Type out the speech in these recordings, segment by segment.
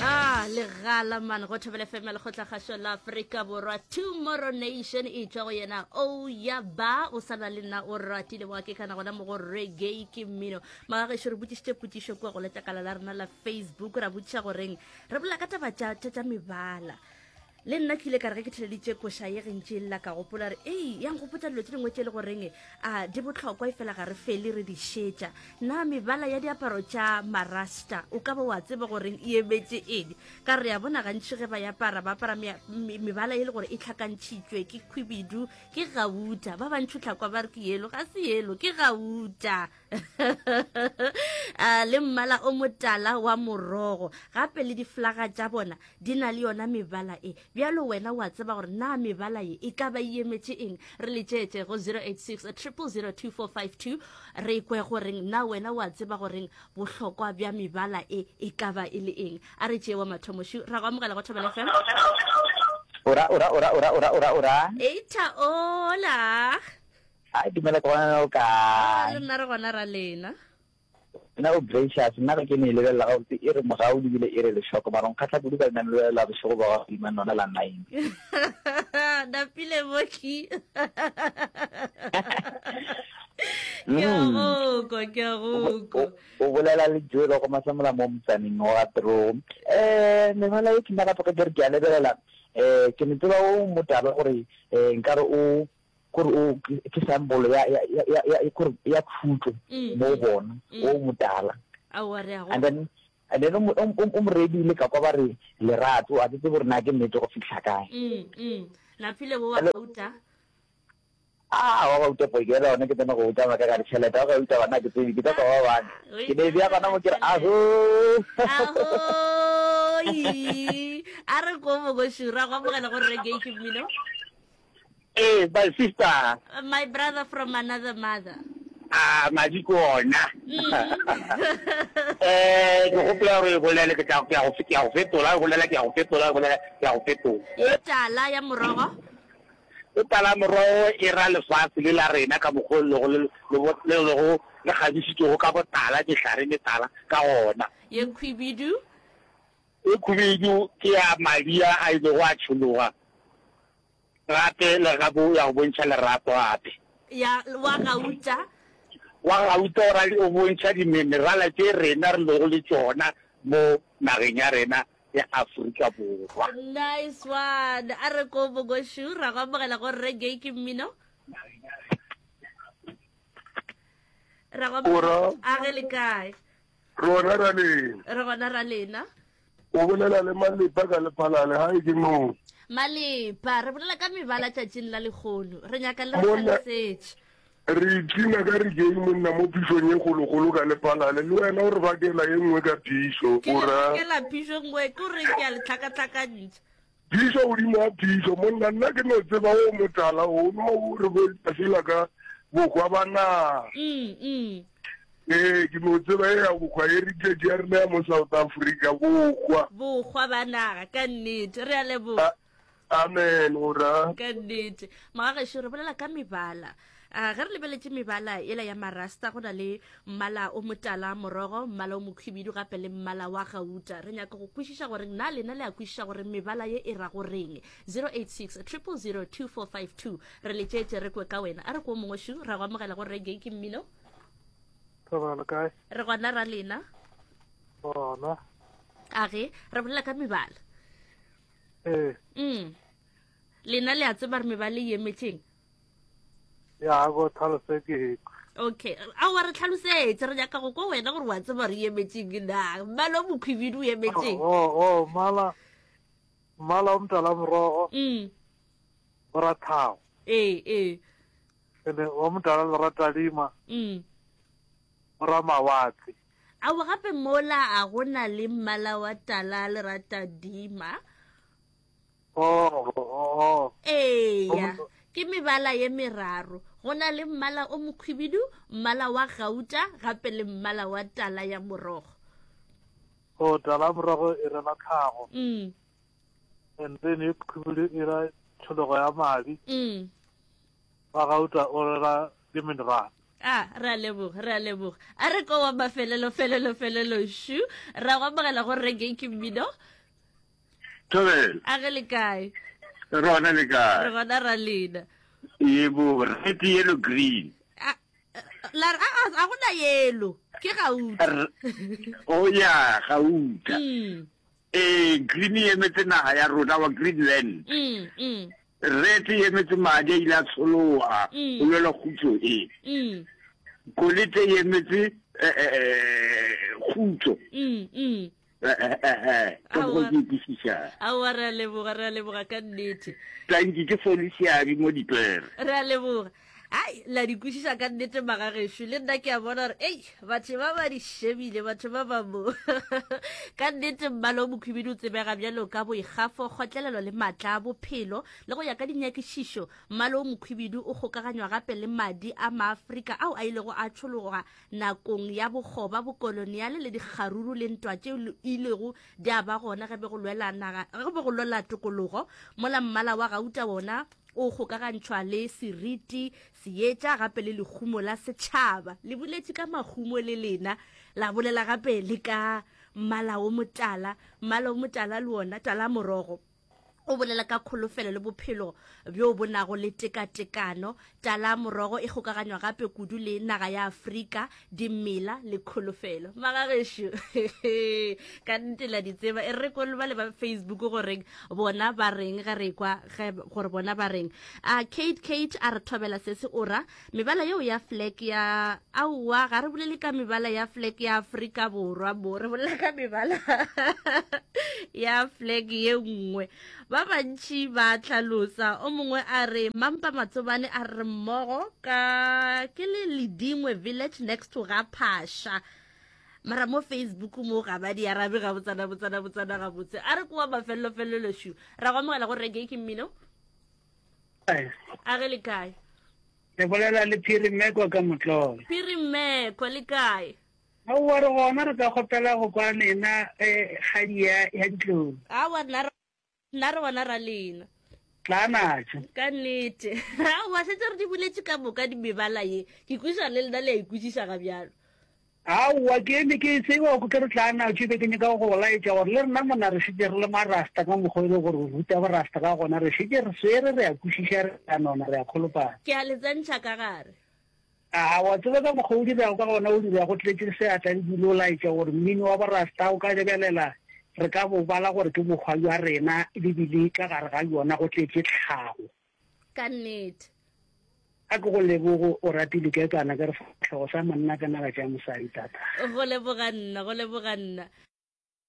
a legala man go thobele fema lekgotlakgašo la aforika borwa tomorrow nation e tšwa go yena o ya ba o sana le nna o ratile wa ke kana gona mo go reggae ke mmino magagešo re botšišitše potsišo kua go letlakala la rena la facebook ra botšiša goreng re bolela ka taba tša tša- tša mebala Le nna ke ile ka re ge ke theleditše koša ye gentši e lla ka gopola re ei ya nkgopotsa dilo tše dingwe tše e le goreng a di botlhokwa e fela ga re fele re di šetša na mebala ya diaparo tša marasta o ka ba wa tseba goreng e emetse edi ka re ya bona gantši ge ba yapara ba apara mebala e le gore e tlhakantšhitšwe ke khwibidu ke gauta ba bantšho tlhakwa ba re ke yelo ga se yelo ke gauta uh, le mmala o motala wa morogo gape le diflaga tša bona di na le yona mebala e bjalo wena wa tseba gore na mebala ye e ka ba e emetše eng re letšeetše go 086 002452 re kwe goreng na wena wa tseba goreng bohlokwa bja mebala e e ka ba e le eng a re tšee wa mathomošu ra go amogela go thobela fm ora ora ora ora ora ora ora eita ola Hai dumela ke gona o kae? Le nna re gona ra lena. Nna o gracious nna ga ke ne e lebelela ga botse e re mogau le bile e re lešoko mara nkgatlha kudu ka nna ne lebelela bošego ba ga godima nona la nine. Napile moki. Ke a mm. gokwa ke a gokwa. O bolela le Joe ba go masamola mo motsaneng wa Tro. Eh mengwana e ke nna ka tloga ke re ke a lebelela eh ke ne tseba o motaba gore eh nkare o Gore o ke sambolo ya ya ya ya ya gore ya khutlo mm, mo mm, bona mm. o motala. Aowa re a go. And then and then o o mo redile ka kwa ba re lerato a tsetse gore na ke nnete go fitlha kae. Mm, mm. Laphile bo wa gauta. Ah, wa gauta po ke rona ke tsena go uta maka ka ditšhelete wa gauta bana ke tsebe ke tsa ba bana ke ne bja gona mo ke re aho aho a re ko mo go shura go amogela go rege ke mmino Ee, my sister. Uh, my brother from another mother. Ah, madi ke ona. Eh, ke gopola gore e bolele ke tla ke ya go ke ya go fetola, e bolela ke ya go fetola, e bolela ke ya go fetola. E tala ya morogo. E tala morogo e ra lefatshe le la rena ka mokgwa le go le le le go le gadisitse go ka botala ke hlare le tala ka ona. Ye khwibidu. E khubedu ke ya madi a a ilego a tšhologa gape le ga bo ya go bontšha lerato gape. Ya wa gauta. Wa gauta o ra o bontšha diminerala tše rena re lego le tšona mo nageng ya rena ya Afrika Borwa. Nice one. A re ko Mogoshu ra go amogela go reggae ke mmino. Ra go amogela. Ora. A ge le kae? Re gona ra lena. Re gona ra lena. O bolela le malepa ka lephalale ha e ke moo. Malepa re bolela ka mebala tšatšing la lekgono. Re nyaka le re tlhalosetše. Re itlina ka re keng monna mo phishong e kgolokgolo ka lephalale le wena o re bakela e nngwe ka phišo. Ke re bakela phišo e nngwe ke o re ke a letlhakatlhakantšha. Phišo godimo ga phišo, monna, nna ke no tseba wo motala o no re bo Tafila ka bohwa ba naga. Ee, ke no tseba e ya bohwa, heritage ya rena ya mo South Africa, bohwa. Bohwa ba naga, ka nnete. Re a leboga. Amen, o ra. Ka nnete. Mogagešo, re bolela ka mebala. Uh, ge re lebeletše mebala ela ya marasta go na le mmala o motala morogo mmala o mokhwibidu gape le mmala wa gauta re nyaka go kwešiša gore na lena le a kwešiša gore mebala ye e ra go reng 086 002452 re letšeetše re kwe ka wena a re ko mongwe šu ra go amogela go rege ke mmino re gona ra lena gona a ge re bolela ka mebala ee mm. lena le a tseba re mebale ye meeting ya go tlhalose ke okay a wa re tlhalosetse re nyaka go ko wena gore wa tseba re emetseng na mmala o mokhwibidu o emetseng o oh, oh, oh, mmala mmala o motala morogo mm. o rathago ee ee ene o motala le ratalima mm. o ra mawatle ao gape mola a go na le mmala wa tala le ratadima eya ke mebala ye meraro go na le mmala o mokhwibidu mmala wa gauta gape le mmala wa tala ya morogo o tala ya morogo e rela tlhago mm. and then e khwibidu e ra tshologo ya madi mm. wa gauta o rela le mineral a re a leboga re a leboga a re ko wa mafelelo felelo felelo shu ra go amogela go reke ke mmino Tobel. A ge le kae? Re gona le kae? Re gona ra lena. Yebo, red, yellow, green. A la a a gona yellow. Ke gauta. O oh, ya gauta. Mm. Eh, green e emetse naga ya rona wa Greenland. Mm, mm. Red e emetse madi a ile a tshologa mm. go lwela khutso e. Mm. Kolete e emetse eh, eh, eh, khutso. Mm, mm. aowa re a leboga re a leboga ka nnete tanki ke folisiabi mo dipere re a leboga ai la di kwešiša ka nnete magagešu le nna ke a bona gore ei batho ba ba di šebile batho ba ba mo ka nnete mmale o mokhubidi o tsebega bjalo ka boikgafo kgotlelelo le maatla a bophelo le go ya ka dinyakišišo mmale o mokhubidi o kgokaganywa gape le madi a maaforika ao a ilego a tšhologa Nakong ya bokgoba, bokoloniale le dikgaruru le ntwa tšeo li ilego di a ba gona ge be go lwela naga, ge be go lwela tokologo, mola mmala wa gauta wona o kgokagantšhwa le seriti, seetša gape le lehumo la setšhaba. Le boletše ka mahumo le lena, la bolela gape le ka mmala o motala, mmala o motala le wona, talamorogo. O bolela ka kholofelo le bophelo bjo bo nago le tekatekano. Tala morogo e kgokaganywa gape kudu le naga ya Afrika, dimela le kholofelo. Magagešo, ka nnete la di tseba. E re kolo bale ba Facebook goreng bona ba reng ge re kwa gore bona ba reng. A Kate Kate a re thobela sese ora Mebala yeo ya flag ya aowa ga re bolele ka mebala ya flag ya Afrika Borwa mo re bolela ka mebala ya flag ye nngwe ba bantši ba tlhalosa o mongwe a re mampa matsobane a re mmogo ka ke le ledingwe village next to ga phasha mara mo facebook mo ga ba di arabe ga botsana botsana botsana gabotse a re kowa mafelelo felelo shu ra go amogela go reggae ke mmino a re le kae ke bolela le phiri mmekwa ka motlolo phiri mmekwa le kae aowa re gona re ka kgopela go kwa lena kgadi ya ditlou aowa nna re gona ra lena tlanatso ka nnete aowa setse re di buletse ka moka di mebala ye ke kwiša le lena le ya ikwišiša ga bjalo Aowa, ke eme ke e tseba oko ke re tla na tšo be ke nyaka go go laetša gore le rena mona re šetše re le marasta ka mokgwa e le gore o ruta borasta ka gona re šetše re swere re a kwešiša re a nona re a kholopana. Ke a le tsentšha ka gare. A wa tseba ka mokgwa o dirago ka gona o dira go tletše seatla le dule o laetša gore mmino wa borasta o ka lebelela re ka bo bala gore ke bokgwa bja rena le bile ka gare ga bjona go tletše tlhago. Ka nnete. A ke go leboge o rati diketsana ka re sefatlhego sa monna ka naga tša mosadi tata. Go leboga nna, go leboga nna.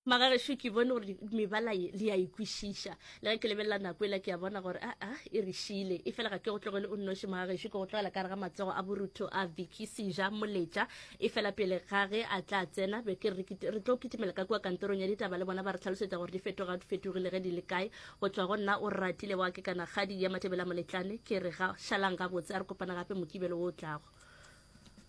Magagešu ke bone gore mebala ye le ya e kwešiša. Le ge ke lebelela nako ela ke ya bona gore a a e re šiile. E fela ga ke go tlogele o nnoši Magagešu ke go tlogela ka re ga matsogo a borutho a Vicky Sija Moletša. E fela pele ga ge a tla tsena be ke re re tlo kitimela ka kua kantorong ya ditaba le bona ba re hlalosetša gore di fetoga fetogile ge di le kae. Go tšwa go nna o ratile wa ke kana kgadi ya Matebela Moletlane ke re ga šalang gabotse a re kopana gape Mokibelo wo o tlago.